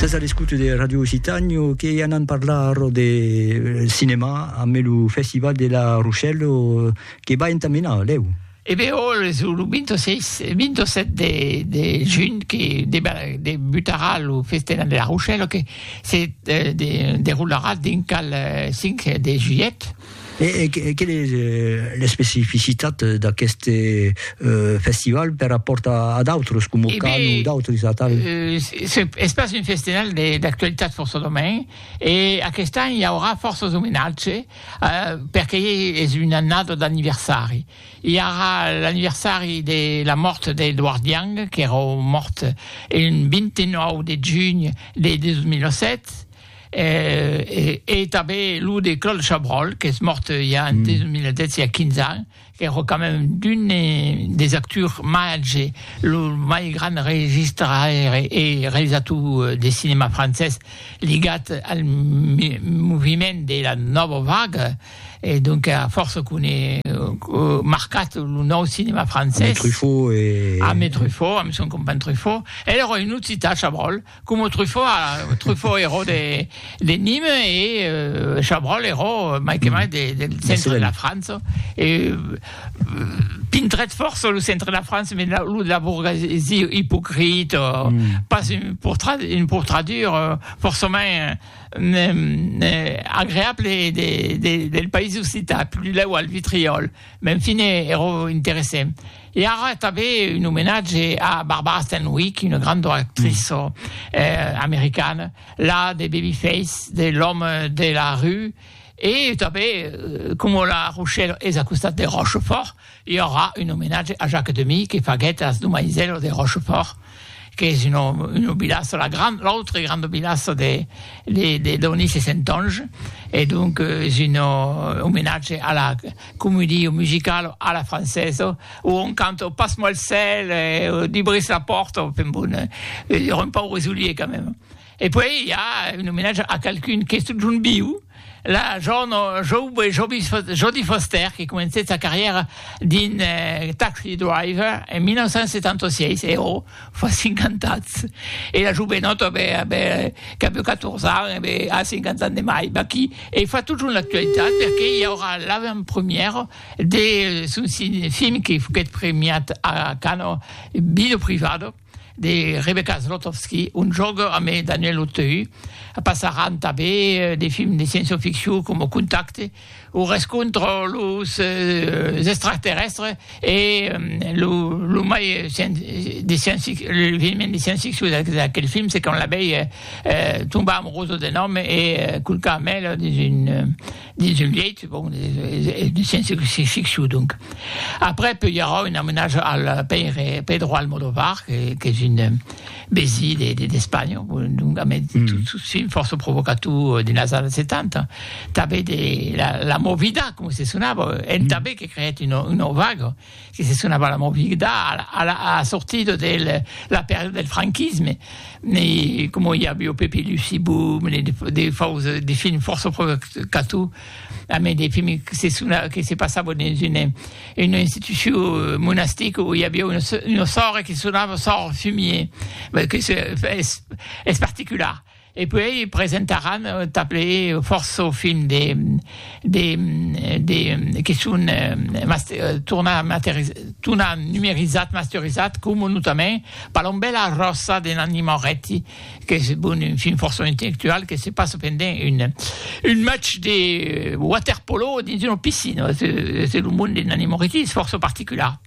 Sas a l'escouta de Radio Occitània que anam parlar ara de cinema amb lo Festival de la Rochelle que va entamenar, lèu. E ben, ol es lo 26, 27 de, de junh que debutarà lo Festival de la Rochelle que se deroularà dinc al 5 de julhet. E quelle es l'especificitat d'aqueste festival per rapòrt a d'autres, coma Cannes o d'autres atal? Es pas un festival d'actualitat fòrça domain, e aquest an i aurà fòrças omenatge perque es una annada d'anniversari. I aurà l'anniversari de la mòrt d'Edward Young, qu'èra mòrt un 29 de junh de 2007, E tanben lo de Claude Chabrol, qu'es mòrt ja en 2010, ja 15 ans, qu'ère quand même d'un des actors màger, lo mai grand registraire e realizator de cinèma francés ligat al moviment de la Nòva Vaga, e donc a fòrça qu'un e marcat lo nòu cinèma francés. Ame Truffaut e. Ame Truffaut, ame son companh Truffaut. El èra un occitan, Chabrol. Coma Truffaut, Truffaut eró de de Nîmes e Chabrol eró mai que mai de del centre de la França e pintrèt fòrça lo centre de la França mès la lo de la bourgesie ipocrit o pas un portrat un portradur fòrçament agreable de de del país occitan, plus lèu al Vitriòl, mès en fine eró interessent. E ara tanben un omenatge a Barbara Stanwyck, una granda actriça americana, la de Babyface, de L'homme de la rue, e tanben coma la Rochèla es a costat de Rochefòrt, i aurà un omenatge a Jacques Demy que faguèt as domaisèlas de Rochefòrt. qu'es una una vilassa, la gran, l'autre grande vilassa de de de Donis e Sentonge e donc es un omenatge a la comedia musicala a la francesa o on canta Passe-moi le sel e Dubris la porte, enfin bon, un paure soulier quand même. E puèi i a un omenatge a qualqu'un qu'es totjorn viu, la jorna joube Jodie Foster que comencèt sa carrièra dins Taxi Driver en 1976, e ò, fa 50 ans! E la jovenòta qu'avèu 14 ans e be a 50 ans de mai, vaquí, e fa totjorn l'actualitat perque i aurà l'avantpremièra de son film que foguèt premiat a Cannes, Vida privada. de Rebecca Zlotowski, un jòc amé Daniel Auteuil. Passaràn tabé de films de sciençoficcion coma Contacte, o rescontre los extraterrèstres e lo mai de sciençficcion de sciençficcion d'aquel film se quand la vei tombar amorosa d'un òme e culcar mèl dins un dins un lièit, bon, de sciéncia-ficcion, donc. Après, peu i aurà un omenatge al pèire Pedro Almodóvar, qu'es un besi d'Espanha, donc a mès tot film fòrça provocator dins las annadas 70. Tanben la Movida, coma se sonava, entà be que creèt una vaga. que se sonava la movida a la sortida de la pèrda del franquisme, e coma i aviá Pepe e Lucie Boom, de fòus, de films fòrça provocators, a mei de films que se sonava, que se passava dins una institucion monastica o i aviá una sòrre que sonava sòrre Fumier, que es particular. E puèi presentaràn tanples fòrça films de de de que son tornat numerizats, masterizats, coma notament Palombèla ròsa de Nanni Moretti, qu'es bon un film fòrça intellectual que se passa pendent un un match de waterpolo dins una piscina, es es lo monde de Nanni Moretti es fòrça particular.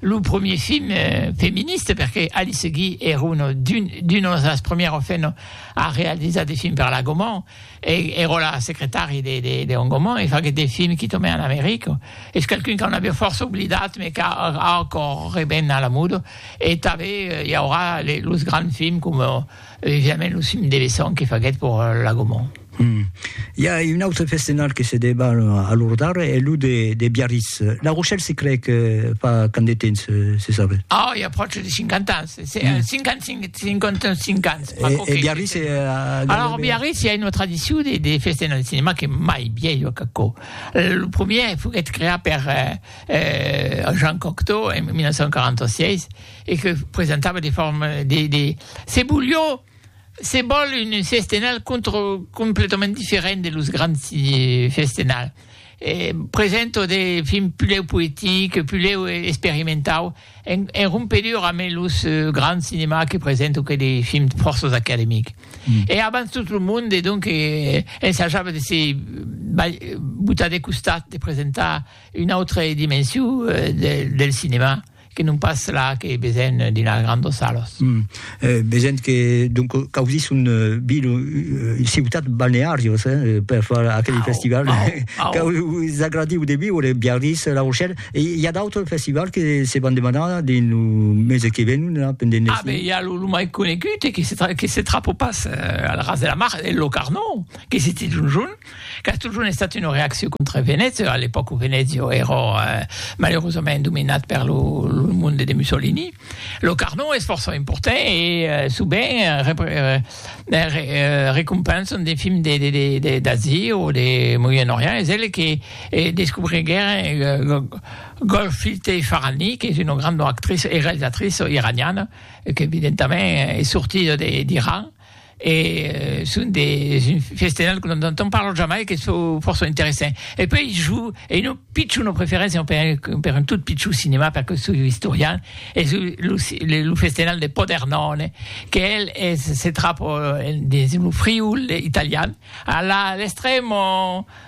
lo premier film feministe, perque Alice Guy ère una d'unes das premières femnes a realizar de films per la Gaumont, e ère la secretari de Hong Gaumont, e faguèt de films qui tomè en America. Es qualqu'un qu'an aviá fòrça oblidat, mes qu'a ancòr reven a la moda, e tanben i aurà los grands films coma, E jamès lo cim de Besson que faguèt pòur a Lagomont. Hum. I a un autre festenal que se deba a Lordar, es lo de de Biarritz. La Rochelle se crèc fa quand de temps, se sabe? Oh, i a pròche de 50 ans, se se a 55, 55 ans. E e Biarritz e a gaire Alors a Biarritz i a una tradicion de de festenal de cinema qu'es mai vielha qu'aquò. Lo premier foguèt creat per eh Jean Cocteau en 1946. e que presentava de forma de de se bolhó se bòl un festenal contro completament diferent de los grands festenal e presento de film pulèu poetic pulèu experimentau en en rompedura ame los grands cinema que presento que de films fòrços academic e abans tot lo monde e donc ensajava de se botar de costat de presentar una autre dimension del del cinema Que non pas la que vesen dina grandos salos. Vesen que donc causís un vil un ciutat balnearios per far aquel festival. Us agradiu de viure Biarritz, La Rochelle e i a d'autres festivals que se van demanar dins lo mes que venon la pendent l'estiu. Ah ben i a lo mai conegut e que se trapo pas al ras de la mar, lo Carnot, que se titz un jorn. Qu'as totjorn estat una reaccion contra Venècia, a l'epòca o Venècia èra malerosament dominat per lo monde de Mussolini. Lo Carnot es fòrça important e sovent recompensan de films d'Asia o de Moyen Orient. Es el que descobriguèron Golshifteh Farahani, qu'es una granda actriça e realizatriça iraniana, qu'evidentament es sortida d'Iran. e son de un festenal que non entend parlar jamai que çò fòrça interessant e puèi jo e una pichona preferéncia per un per un tot pichon cinema perque soi istorian e çò lo lo festenal de Podernòne qu'el es se trapa dins lo Friül italian a la l'extrèma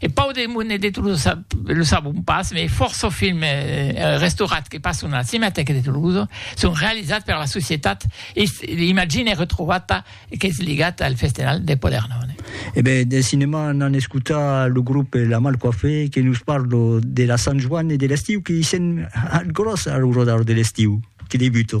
E Pau de Monet de Tolosa, lo sabon pas, mai fòrça films restaurats que passon a la Cinematèca de Tolosa son realizats per la societat Imagine Retrovata qu'es ligat al Festenal de Podernòne. E ben, del cinèma anam escotar lo grop La Mal Coiffée que nos parla de la Sant Joan e de l'estiu que i sèm al gròs al rodar de l'estiu que debuta.